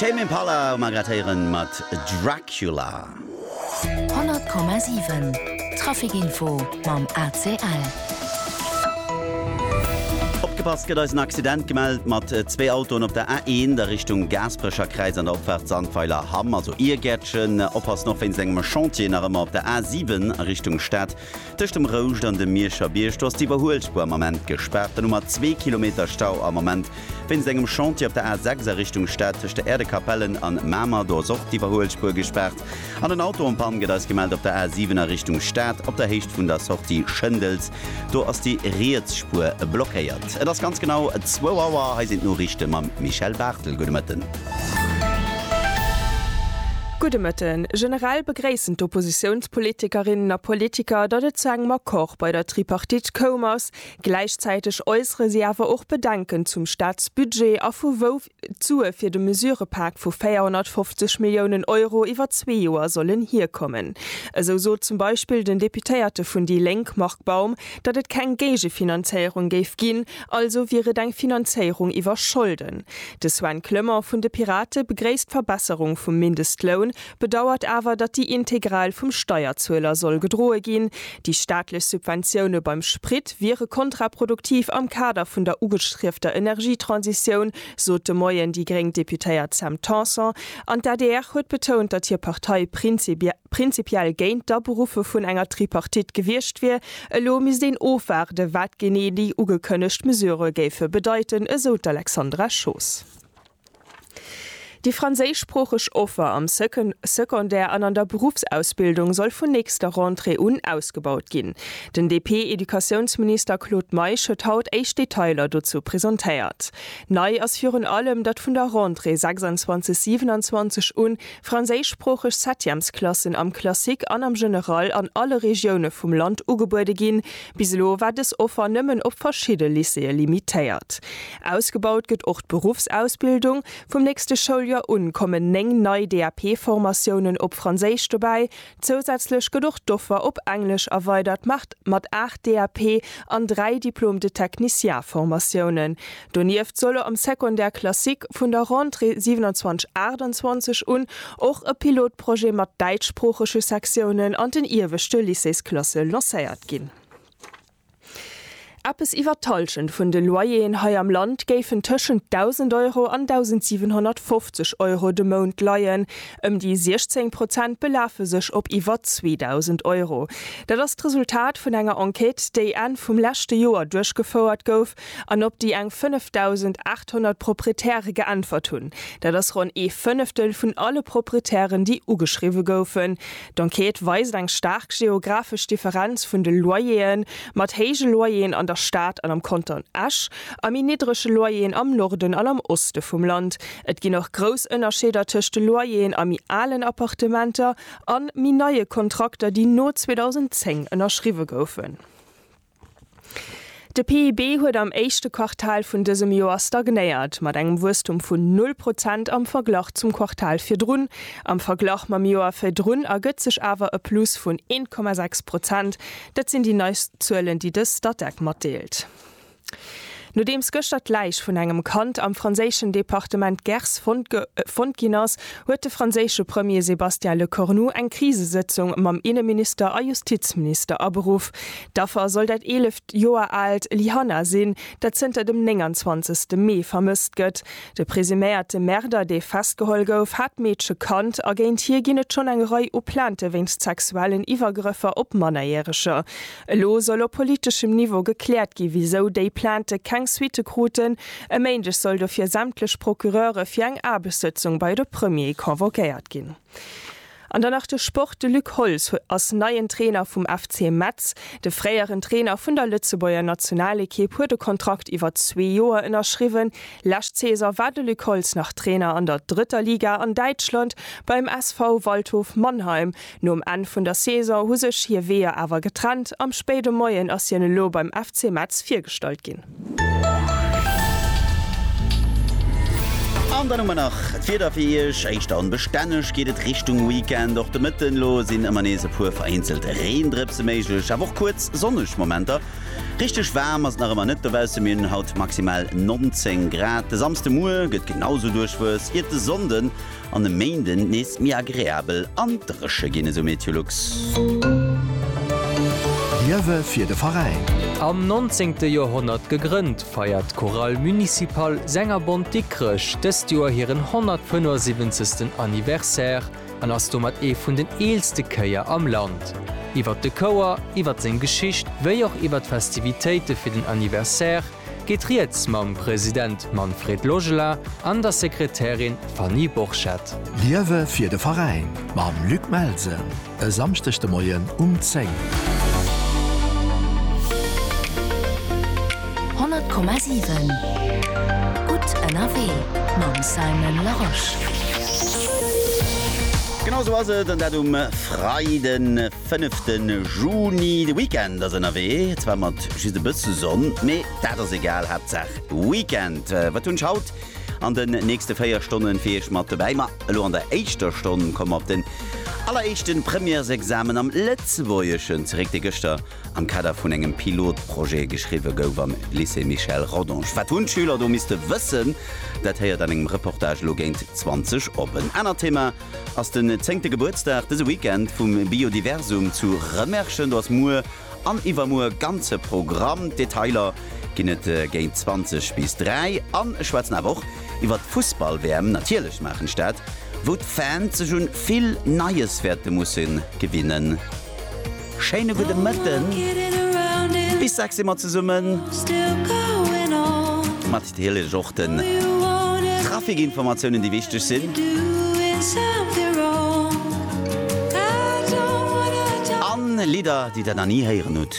Tame Impala um a grad héieren mat Dracula. 100,7 Traficinfo mam ACL. Opgepasst, gëtt eis en Accident gemellt mat zwee Autoen op der A1 a Richtung Gaasperecherkräiz an der Opfaart Sandweiler Hamm, also Iergäertchen. Oppassen och wéinst engem Chantier nach ëmmer op der A7 a Richtung Stad. Tëscht dem Rouscht an dem Mierscher Bierg, do ass d'Iwwerhuelspuer am Ament gespaart. Dann hu mer zwee Kilometer Stau am Ament wéinst engem Chantier op der A 6 a Richtung Stad tëscht der Äerdekapellen an Mamer. Do ass och d'Iwwerhuelspuer gespaart an en Auto en panne, gëtt eis gemellt, op der A 7 a Richtung Stad op der Héicht vun der Sortie Schëndels. Do ass déi riets Spuer blockéiert. Et ass ganz genau zwou Auer. Hei sinn d'Noriichte mam Michèle Barthel. Gudde Mëtten. Gudde Mëtten. Generell begréissen d'Oppositiounspolitikerinnen a politiker, datt et zu engem Accord bei der Tripartite koum ass. Gläichzäiteg äussere si awer och Bedenken zum Staatsbudget a vu wou d'Sue fir de Mesurepak vu 450 Milliounen Euro iwwer zwee Joer sollen hierkommen. Esou sot zum Beispill den Deputéierte vun déi Lénk Marc Baum, datt et keng Géigefinanzéierung géif ginn, also wier et eng Finanzéierung iwwer Scholden. De Sven Clement vun de Pirate begréisst d'Verbesserung vum Mindestloun, bedauert awer, datt déi integral vum Steierzueler soll gedroe ginn. Déi staatlech Subventioune beim Sprit wiere kontraproduktiv am Kader vun der ugestriefter Energietransitioun, sot de Moien déi gréng Deputéiert Sam Tanson. An d'ADR huet betount, datt hir Partei prinzipiell géint d'Aberuffe vun enger Tripartite gewiescht wier, Elo misst een ofwaarde wat genee déi ugekënnegt Mesurë géife bedeiten, esou d'Alexandra Schoos. Déi franséischsproocheg Offer am Secondaire an an der Beruffsausbildung soll vun nächster Rentrée un ausgebaut ginn. Den DP-Educatiounsminister Claude Meisch huet haut éischt Detailer dozou presentéiert. Nei ass virun allem, datt vun der Rentrée 26/27 un franséischsproocheg Septièmesklassen am Classique an am General an alle Regioune vum Land ugebuede ginn. Bis elo war dës Offer nëmmen op verschidde Lycéeë limitéiert. Ausgebaut gëtt och d'Beruffsausbildung. Vum nächste Schouljoer un kommen 9 nei DAP-Formatiounen op Franséisch dobäi, Zousätzlech gëtt och d'Offer op Englesch erweidert mat mat 8 DAP an 3 Diplôme de technicien Formatiounen. Donieft solle am Secondaire classique vun der Rentrée 27 28 un och e Pilotprojet mat däitschsproochege Sektiounen an den ieweschte Lycéesklasse lancéiert ginn. Eppes iwwer d'Hallschent vun de Loyeren hei am Land géifen tëschent 1.000 Euro an 1.750 Euro de Mount leien. Ëm déi 16 Prozent belafe sech op iwwer 2.000 Euro. Dat ass d'Resultat vun enger Enquête, déi Enn vum leschte Joer duerchgefouert gouf an op déi eng 5.800 Proprietäre geäntwert hunn. Dat ass ronn ee Fënneftel vun alle Proprietären, déi ugeschriwwe goufen. D'Enquête weist eng staark geographesch Differenz vun de Loyer'e mat héije Loyer'en an der Stad an am Kanton Esch a méi niddrege Loyer'en am Norden an am Oste vum Land. Et ginn och grouss Ënnerscheeder tëscht de Loyer'en a méi alen Appartementer a méi neie Kontrakter, déi no 2010 ënnerschriwwe goufen. De PIB huet am éischte Quartal vun dësem Joer stagnéiert, mat engem Wuesstum vun null Prozent am Verglach zum Quartal virdrun. Am Verglach mam Joer virdrun ergëtt sech awer e Plus vun 1,6 Prozent. Dat sinn déi neist Zuelen, déi de Statec matdeelt. Nodeems gëschter d'Läich vun engem Kand am franséischen Departement Gers fonnt ginn ass, huet de franséische Premier Sébastien Lecornu eng Krisesëtzung mam Inneminister a Justizminister aberuff. D'Affer soll dat eeleft Joer aalt Lyhanna sinn, dat zënter dem 29 Mee vermësst gëtt. De presuméierte Märder, dee festgeholl gouf, hat d'Meedche kannt a géint hie ginn et schonn eng Rei u Plainte wéinst sexuellen Iwwergrëffer op Mannerjäreger. Elo soll op politeschem Niveau gekläert gi wisou déi Plainte keng Suitte kruten. E Méindeg soll dofir sämtlech Procureure fir eng Aarbechtssëtzung bei de Premier convoquéiert ginn. An dann nach de Sport, De Luc Holtz ass neien Trainer vum FC Metz. De fréieren Trainer vun der Lëtzebuerger Nationalekipp huet e Kontrakt iwwer zwee Joer ënnerschriwwen. Lescht Saison war de Luc Holtz nach Trainer an der drëtter Liga an Däitschland beim SV Waldhof Mannheim, Nom Enn vun der Saison hu sech hir Weeër awer getrennt. Am spéide Moien ass hien elo beim FC Metz virgestallt ginn. An dann hu mer nach d'Wieder fir Iech. Éischter onbestänneg geet et Richtung Weekend. Och de Mëtten elo sinn ëmmer nees e puer vereenzelt Reendrëpse méiglech, awer och kuerz sonneg Momenter. Richteg waarm ass et nach ëmmer net dobausse, mir hunn haut maximal 19 Grad. De Samsdemuer gëtt genau esou duerchwuess, iert de Sonnde An e Méinden nees méi agreabel an dréche ginn, esou Meteolux. Liewe fir de Veräin! Am 19. Joerhonnert gegrënnt, feiert d'Chorale Municipale Sängerbond Dikrech dëst Joer hiren 175. Anniversaire an ass domat ee vun den eelste Chéier am Land. Iwwert de Chouer, iwwert seng Geschicht wéi och iwwert d'Festivitéite fir den Anniversaire, geet rieds mam President Manfred Logela an der Sekretärin Fanny Borchert. Liewe fir de Veräin mam Luc Melsen e Samschdeg de Moien um 10. Honnert Komma siwen, gutt ënnerwee mam Simon Larosche. Genau esou ass et, an dat um Freiden. Fënnefte Juni, de Weekend ass ënnerwee, zwar mat just e bësse Sonn, mee dat ass egal, Haaptsaach Weekend. Wat hunn ech haut an den nächste 4 Stonne fir Iech mat dobäi? Ma elo an der éischter Stonn komme mer op den alleréischte Premièresexamen am Lëtzebuergeschen zeréck, dee gëschter am Kader vun engem Pilotprojet geschriwwe gouf am Lycée Michel Rodange. Wat hunn d'Schüler do misste wëssen? Dat héiert an engem Reportage elo géint 20 op. En anert Thema ass den zéngte Gebuertsdag dëse Weekend vum Biodiversum zu Rëmerschen. Do ass muer an iwwermuer e ganze Programm. D'Detailer ginn et géint 20 bis 3 an ech schwätzen awer och iwwer d'Fussball-WM, natierlech d'Maachenstad, wou d'Fans sech un vill Neies wäerte musse gewinnen. Schéine gudde Mëtten. Bis 6 si mer zesummen. Mat natierlech och den Trafikinformatiounen, déi wichteg sinn. An Lidder, déi der nach ni héieren hutt.